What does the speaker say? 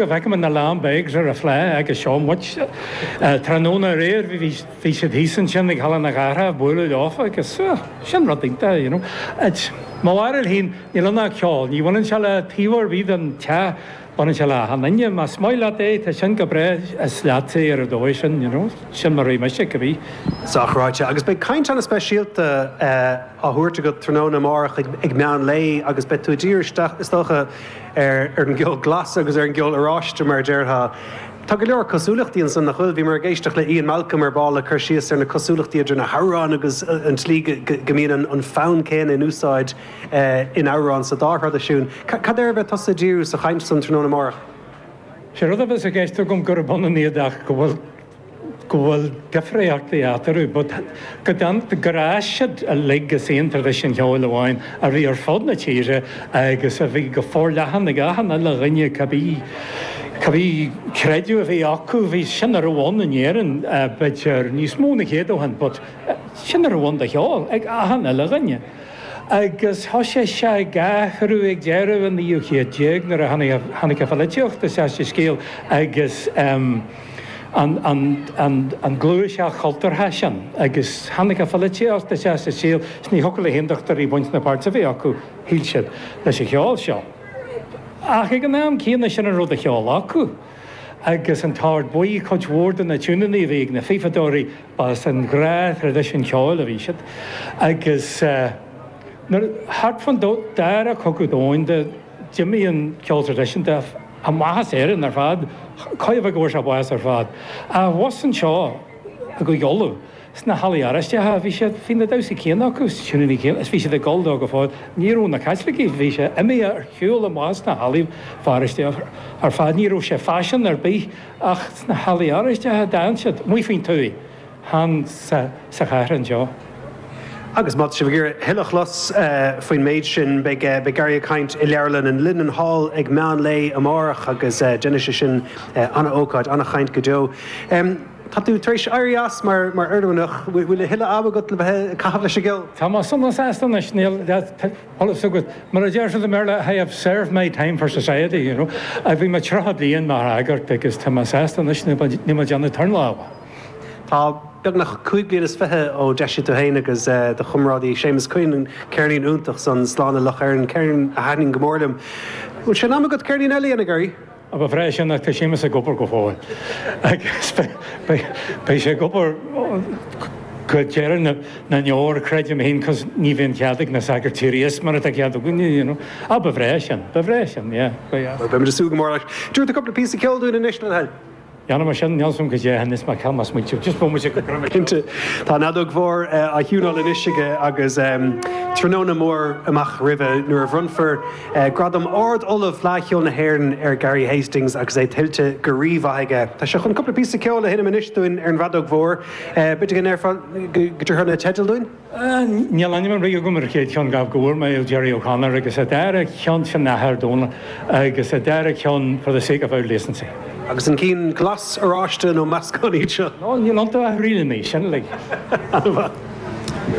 Feicim na Lambegs ar an phlá aige seo muid. Tráthnóna aréir bhí siad thíos ansin ag Halla na Cathrach ag bualadh leofa agus sin rud iontach, you know. Mo bharúil fhéin, níl ann ach ceol. Ní bhaineann sé le taobh ar bith den teach, baineann sé le achan duine. Más maith leat é, tá sin go breá, is leatsa é ar an dóigh sin, you know. Sin mar a bhí mise ag an bhféith. Sách ráite. Agus beidh caint ana speisialta á thabhairt agat tráthnóna amárach ag meán lae agus beidh tú ag dírigh isteach, is dócha, ar an gceol glas agus ar an gceol oráiste mar a déarfá. Tá go leor cosúlachtaí ansan, nach bhfuil? Bhíomar ag éisteacht le Ian Malcolm ar ball ag cur síos ar na cosúlachtaí idir na hamhráin agus an tslí go mbíonn an fonn céanna in úsáid in amhrán sa dá thraidisiún. Cad air a bheidh tusa ag díriú sa chaint san tráthnóna amárach? Sé rud a bheas i gceist agam gurb ionann iad ach go bhfuil. go bhfuil difríochtaí eatarthu but go dtáinig gur fhás siad uilig as aon traidisiún cheoil amháin a bhí ar fud na tíre agus a bhí go forleathan ag achan uile dhuine cibé cibé creideamh a bhí acu bhí sin a raibh ann in Éirinn b'fhéidir níos mó ná céad ó shin but sin a raibh ann de cheol ag achan uile dhuine agus thoisigh sé ag athrú ag deireadh an naoú chéad déag nuair a tháinig an tháinig an pholaitíocht isteach sa scéal agus. an ghluaiseacht chultúrtha sin agus tháinig an pholaitíocht isteach sa saol is ní thiocfadh le haontachtóirí baint ná páirt a bheith acu, shíl siad, leis an cheol seo. Ach ag an am céanna sin a raibh de cheol acu agus an tOrd Buí cuid mhór de na tiúineanna a bhí ag na fífeadóirí ba as an ghnáth-thraidisiún ceoil a bhí siad agus nuair, thart fán dara cogadh domhanda, D'imigh an ceol traidisiúnta amach as Éirinn ar fad. Chóir a bheith go bhfuair sé bás ar fad. Abhus anseo i gCúige Uladh, sna hallaí Oráisteacha, bhí siad, bhí na damhsaí céanna acu is na tiúineanna céanna is bhí siad ag dul dó go fóill. Ní raibh na Caitlicigh, bhí sé imithe ar shiúl amach as na hallaí paróisteacha ar fad. Ní raibh sé faiseanta ar bith ach sna hallaí Oráisteacha a d'fhan siad, amuigh faoin tuaith. chan sa chathair anseo. Agus má tá sibh ag iarraidh a thuilleadh a chlos faoin méid sin, beidh Gary ag caint i leabharlann an Linenhall ag meán lae amárach agus déanfaidh sé sin an-ócáid, an-chaint go deo. Tá tú tar éis éirí as mar oirmhinneach, bhfuil a thuilleadh ama agat le bheith ag caitheamh leis an gceol? Tá mé sona sásta anois, níl de sholas agat, mar a deir siad i mBéarla, I have served my time for society, you know. Bhí mé 30 bliain mar shagart agus tá mé sásta anois, níl mé ag déanamh turnála. Tá beagnach cúig bliana is fiche ó d'eisigh tú féin agus do chomrádaí Séamus Quinn an ceirnín iontach san Slán le Loch Éirne, ceirnín a thaitnigh go mór liom. Bhfuil sé in am agat ceirnín eile a dhéanamh, Gary? Ba bhreá sin ach tá Séamus ag obair go fóill agus beidh sé ag obair go deireadh na ndeor, creidim féin, cos ní bhíonn cead ag na sagairt éirí as mar atá cead againne, you know. Á, ba bhreá sin, ba bhreá sin, yeah, ba dheas. Bhuel, beimid ag súil go mór leis. An dtabharfá cúpla píosa ceoil dúinn anois, le do thoil. Déanfaidh mé sin, níl a fhios agam cad é anois ach má ceann, má smaointím, just bhfuil muid ag an gcruinniú seo. Cinnte. Tá an fheadóg mhór á thiúnáil anois aige agus tráthnóna mór amach roimhe nuair a bhronnfar gradam Ard Ollamh Fleadh Cheoil na hÉireann ar Gary Hastings agus é tuillte go rímhaith aige. Tá sé chun cúpla píosa ceoil a sheinm anois dúinn ar an bhfeadóg mhór. B'fhéidir go ndéarfá go dtabharfá na teidil dúinn? Níl ainm ar bith agam ar an chéad cheann, ach go bhfuair mé ó Gerry O'Connor, agus an dara ceann sin an tAthair Dónal, agus an dara ceann For the Sake of Auld Decency. Agus an cinn glas, oráiste nó meascán iad seo? Níl iontu ach ríleanna, sin uilig. Ana mhaith.